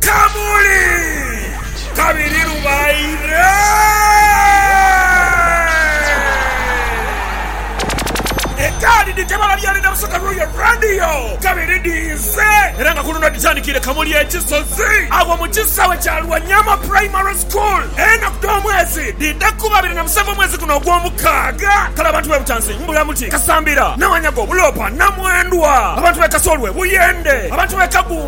Kamuli! Kabiri lubaire ekaadi dhitebala byali na busoga Royal Radio kabiri dhiise era nga kuluno dhitandikiire Kamuli e Kisozi agho mu kisaawe kya Lwanyama Primary School. Enaku dh'omwezi dhiidha kuba abiri na musanvu omwezi guno ogw'omukaaga. Kale abantu b'e Butanzi, Mbulamuti, Kasambira, Nawanyago, Buloopa, Namwendwa, abantu b'e Kasolwe, Buyende, abantu b'e Kagu,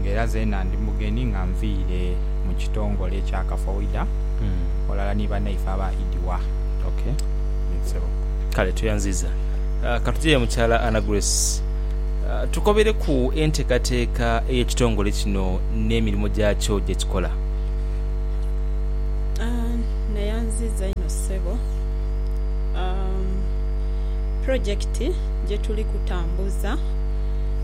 nga era zeena ndi mugeni nga nviire mu kitongole ekya Kafoida ghalala ni banaife aba Idiwa. Ye ssebo. Kale tweyanziiza. Ka tuje ye Mukyala Anna Grace, tukobereku enteekateeka ey'ekitongole kino n'emirimo gyakyo gye kikola. Neyanziiza inho ssebo. Pulojekiti gye tuli kutambuza.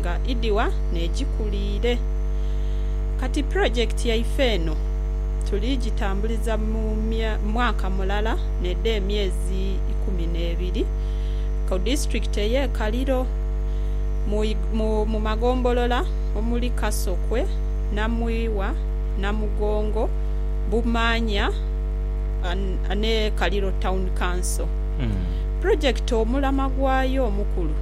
nga idhigha n'edhikuliire. Kati pulojekiti yaife eno tuli gitambuliza mu mwaka mulala n'edho emyezi ikumi n'ebiri ku disitulikiti ey'e Kaliro mu magombolola omuli Kasokwe, Namwiwa, Namugongo, Bumanya ni Kaliro Town Council. Pulojekiti omulama gwayo omukulu.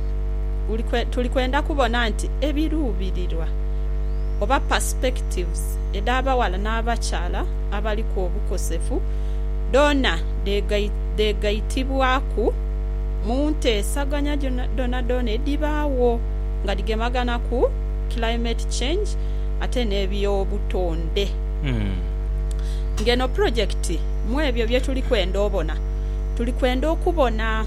tuli kwenda kubona nti ebiruubirirwa oba perspectives edh'abaghala n'abakyala abaliku obukosefu dhoona dheegaitibwaku mu nteesaganya dhoonadhoona edhibaagho nga dhigemagana ku climate change ate n'ebyobutonde. Ng'eno pulojekiti mw'ebyo bye tuli kwenda obona, tuli kwenda okubona.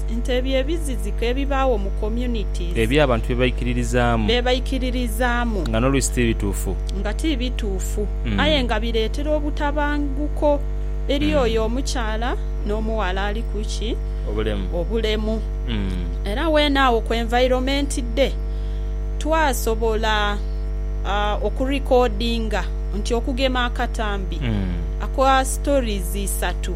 Nti ebyo ebiziziko ebibaagho mu communities. Ebyo abantu bye baikiririzaamu. Bye baikiririzaamu. Nga n'oluisi ti bituufu. Nga ti bituufu. Aye nga bireetera obutabanguko eri oyo omukyala n'omughala ali ku ki? Obulemu. Obulemu. Era weene agho ku environment dhe twasobola oku recordinga nti okugema akatambi aka stories isatu.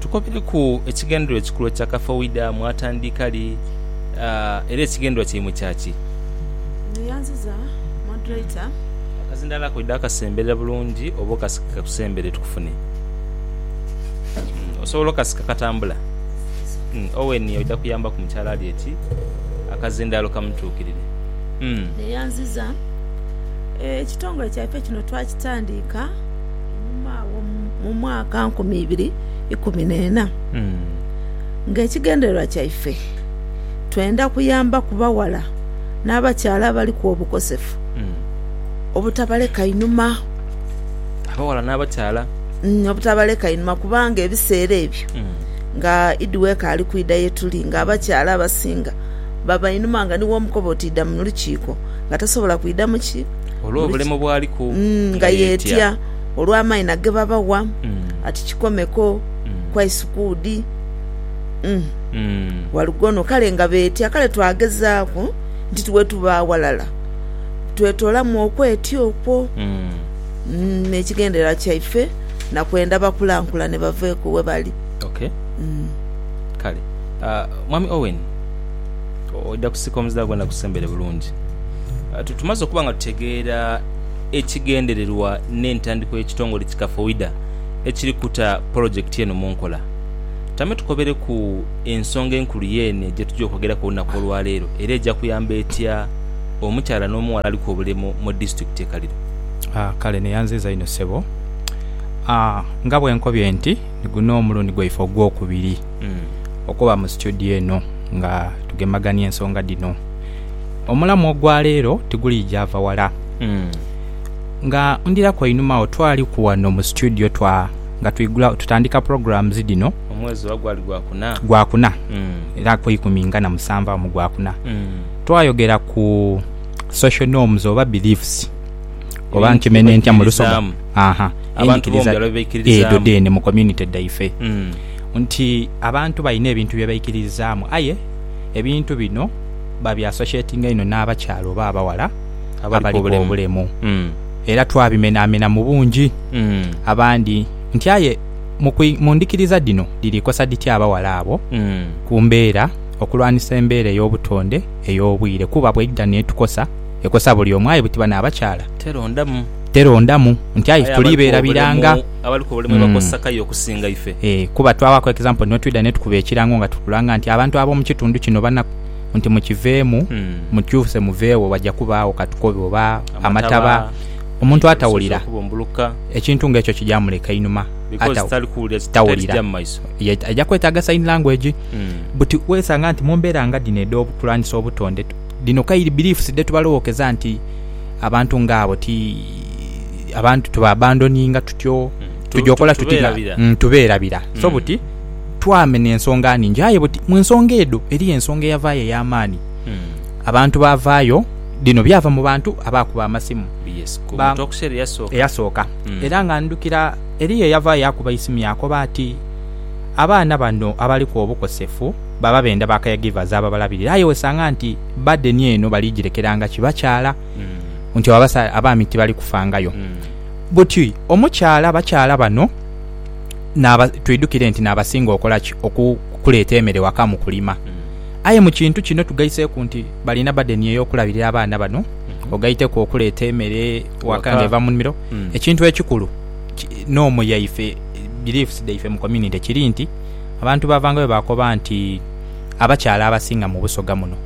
Tukobereku ekigendererwa ekikulu ekya Kafeuida. Mwatandika li, era ekigendererwa kyaimwe kya ki? Neyanziza Moderator. Akazindaalo ako idha kasemberera bulungi oba okasike kakusembere tukufune. Osobola okasika katambula? Owen oidha kuyambaku mukyala ali eti akazindaalo kamutuukirire. Neyanziza. Ekitongole kyaife kino twakitandiika. Einhuma agho mu mwaka nkumi ibiri ikumi n'ena, ng'ekigendererwa kyaife twenda kuyamba ku baghala n'abakyala abaliku obukosefu obutabaleka inhuma. Abaghala n'abakyala. Obutabaleka inhuma kubanga ebiseera ebyo nga Idi w'ekaali kwidha ye tuli, ng'abakyala abasinga baba inhuma nga ni w'omukoba oti idha mu lukiiko nga tasobola kwidha mu ki? olw'obulemu bw'aliku nga yeetya olw'amaina ge babawa ati kikomeko, kwaisukuudi, walugono kale nga beetya. Kale twagezaaku nti bwe tuba aghalala twetoolamu okwetya okwo n'ekigendererwa kyaife na kwenda bakulankulane baveeko we bali. Kale Mwami Owen. Oidha kusika omuzindaalo gwona gusembere bulungi. Tumaze okuba nga tutegeera ekigendererwa n'entandikwa y'ekitongole ki Kafoida ekiri kuta polojekiti eno mu nkola. Tame tukobereku ensonga enkulu yeene gyetugya okwogeraku olunaku olwaleero era egya kuyamba etya omukyala n'omughala aliku obulemu mu disitulikiti e Kaliro. Kale neyanziiza inho ssebo. Nga bwenkobye nti niguno omulundi gwaife ogwokubiri. okuba mu situdio eno nga tugemagania ensonga dhino. Omulamu ogwa leero tiguliija va wala. Nga ndhiraku einhuma agho twaliku ghano mu situdio twa nga twigula tutandika programs dhino. Omwezi oba gwali Gwakuna? Gwakuna. Era ku ikumi nga na musanvu agho mu Gwakuna. Twayogera ku social norms oba beliefs oba nkimenhe ntya mu Lusoga? Abantu b'omu byalo bye baikiririzaamu. Edho dheene mu community dhaife. nti abantu balina ebintu bye baikiririzaamu aye ebintu bino babiasoshetinga inho n'abakyala oba abaghala abaliku obulemu era twabimenaamena mu bungi abandi nti aye mu ndhikiriza dhino dhiri kosa dhitya abaghala abo ku mbeera okulwanisa embeera ey'obutonde ey'obwire kuba bweidha n'etukosa ekosa buli omu aye butiba n'abakyala terondamu. Terondamu nti aye ife tuli beerabira nga. Abali ku bulemu ebakozesa kayo okusinga ife. Eeh kuba twaghaku example ni wetwidha netukuba ekirango nga tukulanga nti abantu ab'omu kitundu kino banaku nti mukiveemu mukyuse muveegho waja kubaagho katukobe oba amataba omuntu atawulira ekintu nga ekyo kija muleka inhuma tawulira ye aja kwetaaga sign language. But wesanga nti mu mbeera nga dhino edh'obukulwanisa obutonde. Dhino kairi beliefs dhetuba lowokeza nti abantu nga abo ti abantu tuba abandoninga tutyo tuja okola tuti nga tuberabira so buti twamena ensonga ningi aye buti munsonga edho eriyo ensonga eyavayo eyamaani abantu bavayo dhino byava mubantu abakuba amasimu eyasooka era nga ndhukira eriyo eyavayo yakuba eisimu yakoba ati abaana bano abaliku obukosefu baba benda ba caregivers ababalabirira aye wesanga nti burden eno bali jirekeranga ki bakyala nti abaami tibali kufangayo but omukyala bakyala bano twidukire nti nabasinga okola ki okuleeta emere waka mu kulima aye mu kintu kino tugaiseku nti balina burden eyokulabirira abaana bano ogaiteku okuleeta emere waka nga eva mu nimiro ekintu ekikulu nomu yaife beliefs dhaife mu community kiri nti Abantu baavangayo baakoba nti, Abakyala abasinga mu Busoga muno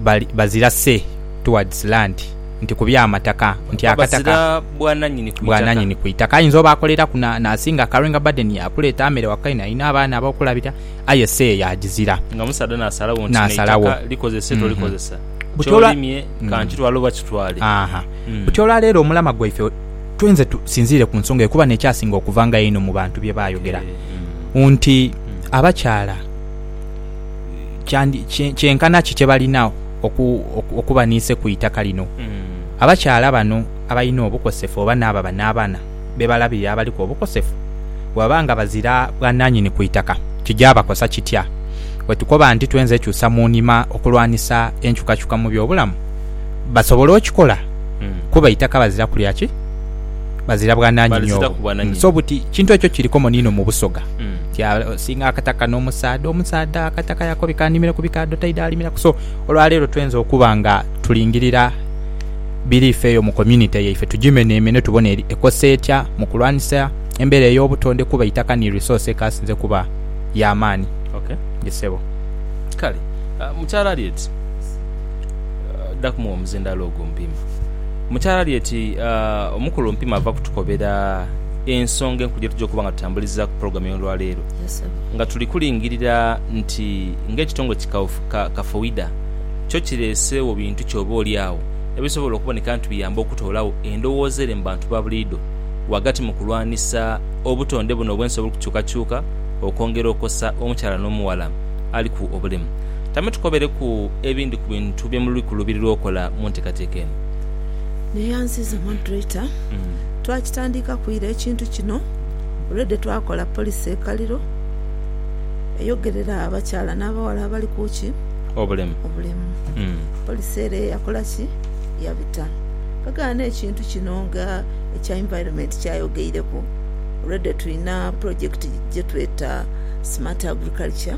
bali bazira say towards land, nti ku by'amataka, nti akataka bwananyini ku itaka. Ayinza oba akoleraku n'asinga Karo nga bade ni yaakuleeta mere waka ino, alina abaana ab'okulabira, aye say yaagizira. Nga musaadha n'asalawo nti n'eitaka likozese tolikozesa, ky'olimye ka nkitwale oba kitwale. Buti olwa leero omulama gwaife. twenze tusinziire ku nsonga eyo kuba n'ekyasinga okuvangayo einho mu bantu bye baayogera nti abakyala kyenkana ki kye balina okuba n'ise ku itaka lino. Abakyala bano abalina obukosefu oba n'abo aba n'abaana be balabirira abaliku obukosefu bwebaba nga bazira bwananyini ku itaka kigyabakosa kitya? Bwe tukoba nti twenze kyusa mu nhima okulwanisa enkyukakyuka mu by'obulamu, basobola okikola kuba eitaka bazira kulya ki? Bazira bwananyini obwo. So buti kintu ekyo kiri komoni inho mu Busoga nti asinga akataka n'omusaadha, omusaadha akataka yakobika animire ku bikaadho taidha alimiraku. So olwaleero twenze okuba nga tulingirira biriifi eyo mu community yaife tugimenemene tubone eri ekosa etya mu kulwanisa embeera ey'obutonde kuba eitaka ni resource ekasinze kuba ya maani. Ye ssebo. Kale. Mukyala Harriet. dha kumugha omuzindaalo ogwo Mpima. Mukyala ali eti, Omukulu Mpima ava kutukobera ensonga enkulu ye tugya okuba nga tutambulizaaku pulogulaamu ey'olwaleero nga tuli kulingirira nti ng'ekitongole ki Kafowida kyo kireeseegho bintu ki oba oli agho ebisobola okuboneka nti biyamba okutoolagho endowooza ere mu bantu ba buliidho ghagati mu kulwanisa obutonde buno obw'ensi obuli kukyukakyuka okwongera okosa omukyala n'omughala aliku obulemu. Tamutukobereku ebindi ku bintu bye muli kuluubirirwa okola mu nteekateeka eno. Naye anziiza Moderator, twakitandiikaku ira ekintu kino. Already twakola policy e Kaliro eyogerera abakyala n'abawala abali ku ki? Obulemu. Obulemu. Policy ere yakola ki? Yabita. Twegana n'ekintu kino nga ekya Environment kyayogeireku, already tulina project gye tweta Smart Agriculture.